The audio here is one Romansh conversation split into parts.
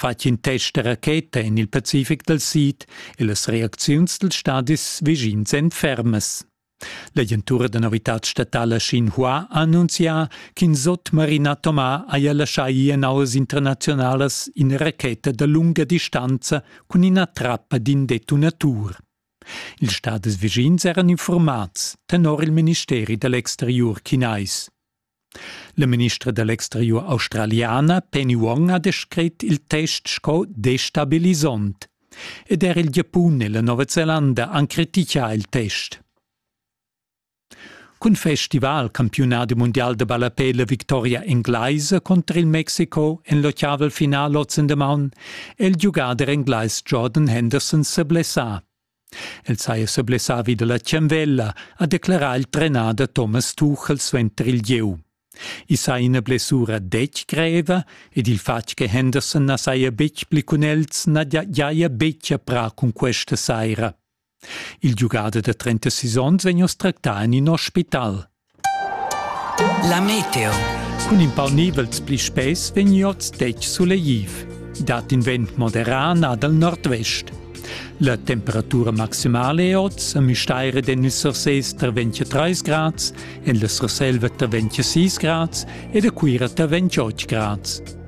fetg in test da racheta en il Pacific dal Sid e las reacziuns dals stadis vischins èn fermas. L'agentura da novitad statala Xinhua ha annunzià ch'in sotmarin atomar haja laschà ir en auas internaziunalas ina racheta da lunga distanza cun ina trappa d'in detonatur. Ils stadis vischins eran informats tenor il ministeri da l'exteriur chinais. La ministra da l'exteriur australiana Penny Wong ha descrit il test sco destabilisant. Ed er il Giapun e la Nova Zelanda han criticà il test. Cun festival campiunadi mundial de ballapé la victoria englaisa contro il Mexico en l'ottaval final ozen de maun è il giugader englais Jordan Henderson se blessà. El saja sa blessavi da la tschanvella, ha declerà il trenader Thomas Tuchel suenter il gieu. I saja ina blessura detg greva ed il fatg che Henderson na saja betg pli cun els na giaja betg a prà cun questa saira. Il giugader da 36 onns vegn oss tractà en in ospital. La meteo. Cun in pau nivels pli spess vegn oz detg sulegliv. Dat in vent moderà nà dal nordvest. La temperatura maximale è oz a Müstair ed en il Sursés tar 23 grads, en la Surselva tar 26 grads ed a Cuira tar 28 grads.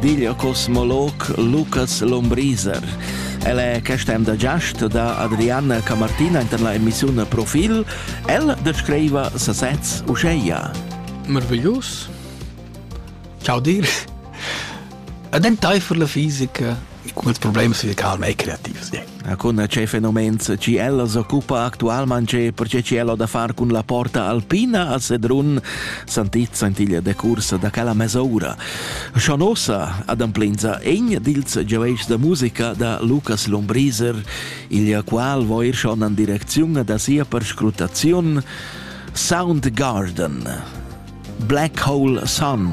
digl cosmolog Lucas Lombriser. El è questa emda giast da Adriana Camartina en la emissiun Profil. El descriva sasez uscheia. Meraviglius. Ciao dir. Ed entaifer la fisica, come il problema si calma e creativs. Cun tgei fenomens che ella s'occupa actualmein, perche che ella da far cun la porta alpina a Sedrun sentit sentiglia de cursa da quella mesura. Schon ossa adamplinza egn dils giaveis de musica da Lucas Lombriser, il qual vo ir schon an direcziun da sia perscrutaziun Sound Garden Black Hole Sun.